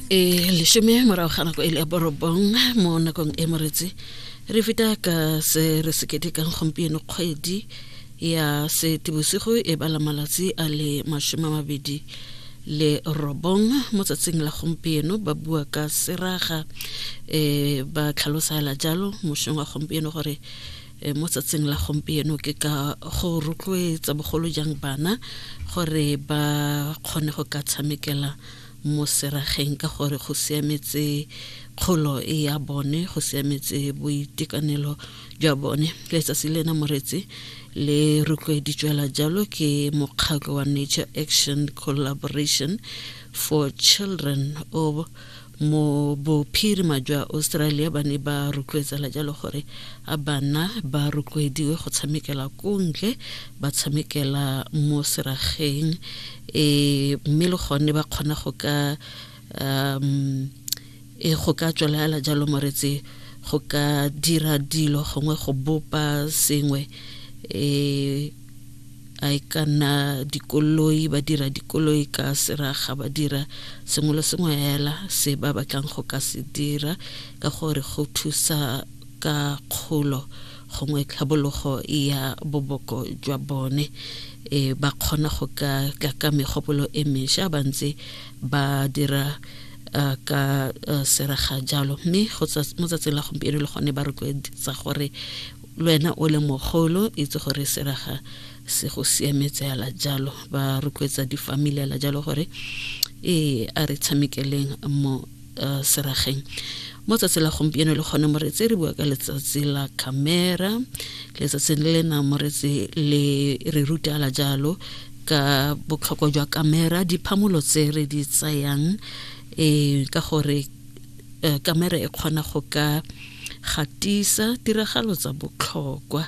e lesome morago ga nako e le borobong mo nakong e moretsi re feta ka se re se ketekang gompieno kgwedi ya setebosigo e bala malatsi a le masome a mabedi le robong mo tsatsing la gompieno ba bua ka seraga um ba tlhalosa jalo mošong wa gompieno gore E, mo tsatsing la gompieno ke ka go rotloetsa bogolo jang bana gore ba kgone go ka tshamekela mo serageng ka gore go siametse kgolo e ya bone go siametse boitekanelo jwa bone letsatsi lena moretsi le rotloeditswela jalo ke mokgatlho wa nature action collaboration for children o mo bophirima jwa australia ba ne ba rotloetsela jalo gore a bana ba rotloediwe go tshamekela kontle ba tshamekela mo serageng um mme le gone ba kgona go ka um e go ka tswelagala jalo moretse go ka dira dilo gongwe go bopa sengwe um a e ka nna dikoloi ba dira dikoloi ka seraga ba dira sengwe le sengwe fela se ba batlang go ka se dira ka gore go thusa ka kgolo gongwe tlhabologo ya boboko jwa bone e ba kgona go ka tla ka megopolo e mesha ba ntse ba dira ka seraga jalo mme mo tsatsing la gompieno le gone ba rotloetsa gore lwena o le mogolo itse gore seraga se go siametse ala jalo ba rotloetsa difamily ala jalo gore ee a re tshamekeleng mo uh, serageng mo tsatsi la gompieno le kgone moretsi re bua ka letsatsi la camera letsatsi le lena moretsi le re ruta ala jalo ka botlhokwa jwa camera diphamolo tse re di tsayang um ka gore kamera eh, e kgona go ka Gatisa tiragalo tsa botlhokwa,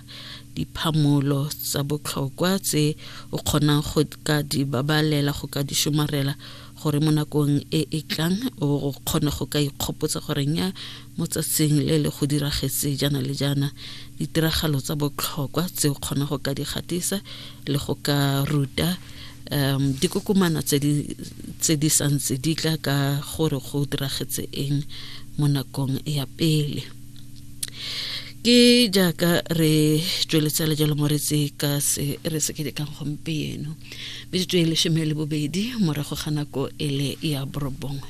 diphamolo tsa botlhokwa tse o kgonang go ka di babalela go ka di somarela gore mo nakong e e tlang o kgone go ka ikgopotsa gore nya mo tsatsing le le go diragetse jaana le jaana ditiragalo tsa botlhokwa tse o kgonang go ka di gatisa le go ka ruta um dikokomana tse di santse di tla ka gore go diragetse eng mo nakong ya pele ke jaaka re tsweletsa lejalo moretsi ka se re se kedekang gompieno metsotso e leshome le bobedi morago ga nako e le ya borobongwe